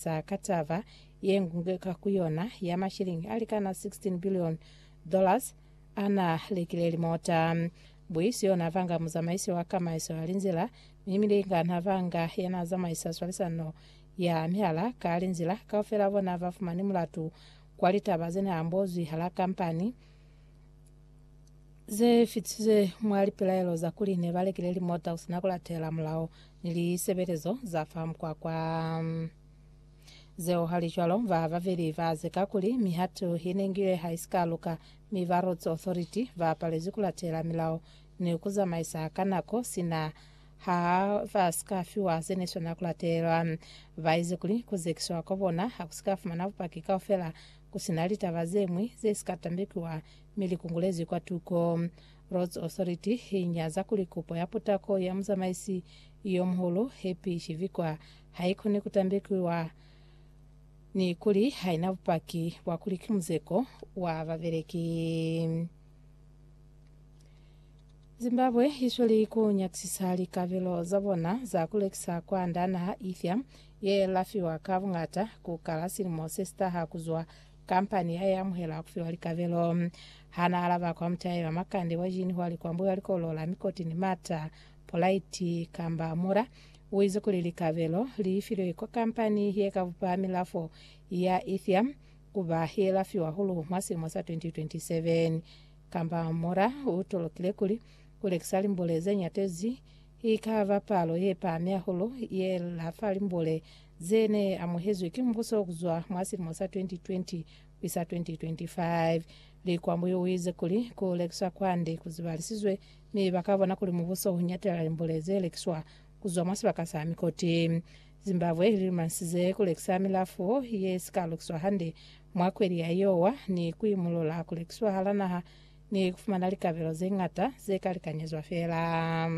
sa ka taba ye ñwi ka ku yona ya mashilingi a likana 16 billion dollars a na lekile limota. Buisi yo na vanga muzamaisi wa kamaiso ya linzila mi Milinga na vanga ya na zamaisa swalisano ya mihala ka linzila. Kaufela bona ba fumani mulatu kwa litaba ze ne ambozwi hala kampani ze fitiswe mwa lipelaelo za kuli ne ba lekile limota ku si na ku latela mulao ni lisebelezo za fa mukwakwa. Zeo halicwalo, ba babeli ba zeka kuli mihatu i nengiwe ha i si ka luka, mi ba Roads Authority ba palezwi ku latela milao ni ku zamaisa ka nako sina ha ba si ka fiwa ze ne swanela ku latelwa. Ba ize kuli ku zekiswa kwa bona ha ku si ka fumana bupaki kaufela Ku si na litaba ze ñwi ze si ka tambekiwa, mi li kungulezwi kwa tuko. Roads Authority i nyaza kuli kupo ya putako ya muzamaisi yo muhulu, Happy Chivikwa, ha i koni ku tambekiwa ni kuli ha i na bupaki bwa kuli ki muzeko wa babeleki. Zimbabwe isweli ku nyakisisa likabelo za bona za ku lekisa kwa nda naha ifya ye lafiwa ka bungata ku kala silimo se sitaha kuzwa kampani ya amuhela kufiwa likabelo. Hana alaba kwa mutayi wa makande wa jini hwa likwambu ya likolo la mikoti ni mata Polaiti Kamba Mura uize kuli likabelo liifilwe kwa kampani ye kabupa milafo ya Ethiam ku ba ye la fiwa hulu mwa silimo sa 2027. Kamba Mora u tolokile kuli, Ku lekisa limbule ze nyatezi i ka ba palo ye pahami hahulu ye la fa limbule ze ne amuhezwi ki mubuso ku zwa mwa silimo sa 2020 ku isa 2025. Likwambi u ize kuli, Ku lekiswa kwande ku zibalisizwe mi ba ka bona kuli mubuso u nyatela limbule ze lekiswa ku zwa mwa sibaka sa mikoti. Zimbabwe i lilumanyisize ku lekisa milafo ye si ka lukiswa hande mwa kweli ya Iowa ni ku imulula ku lekiswa hala naha ni ku fumana likabelo ze ñata ze ka likanyezwa feela.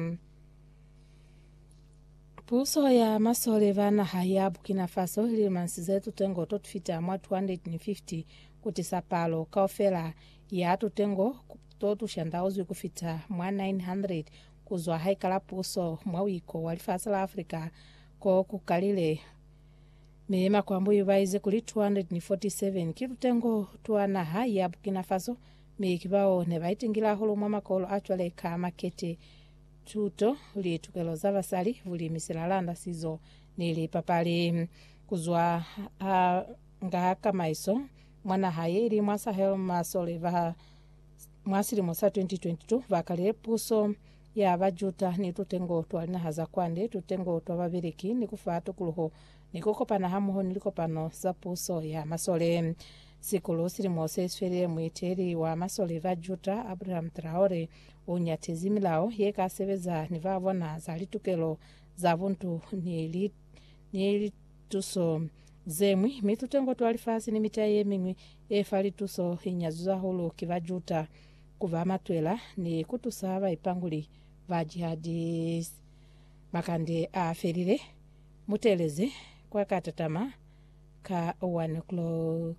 Puso ya masole ba naha ya Burkina Faso i lilumanyisize tutengo to tufita mwa 250 ku tisa palo kaufela ya tutengo to tu shandauzwi ku fita mwa 900 Ku zwa haikala puso mwa wiko wa lifasi la Africa ko ku kalile, mi makwambuyu ba ize kuli 247 ki lutengo twa naha ya Burkina Faso, mi ki bao ne ba itingile hahulu mwa makolo a cwale ka makete, tuto, litukelo za basali, bulimi, silalanda, sizo ni lipapali. Ku zwa ha nga kamaiso mwa naha ye ili mwa Sahel, masole ba. mwa silimo sa 2022 bakale puso ya ba Juda ni tutengo twa linaha za kwande, tutengo twa babeleki, ni kufa tukuluho ni kukopana hamoho ni likopano za puso ya masole. Sikulu silimo seswelile muiteli wa masole ba Juda Abraham Traore unyatezi milao ye ka sebeza ni ba bona za litukelo za buntu ni li, ni li, Tuso zeñwi, mi tutengo twa lifasi ni mitai yemiñwi yefa lituso inyazizwe hahulu ki ba Juda kuba matwela ni kutusa baipanguli ba jihadis. Makande aafelile, mutelezi kwakatatama ka 1 o'clock.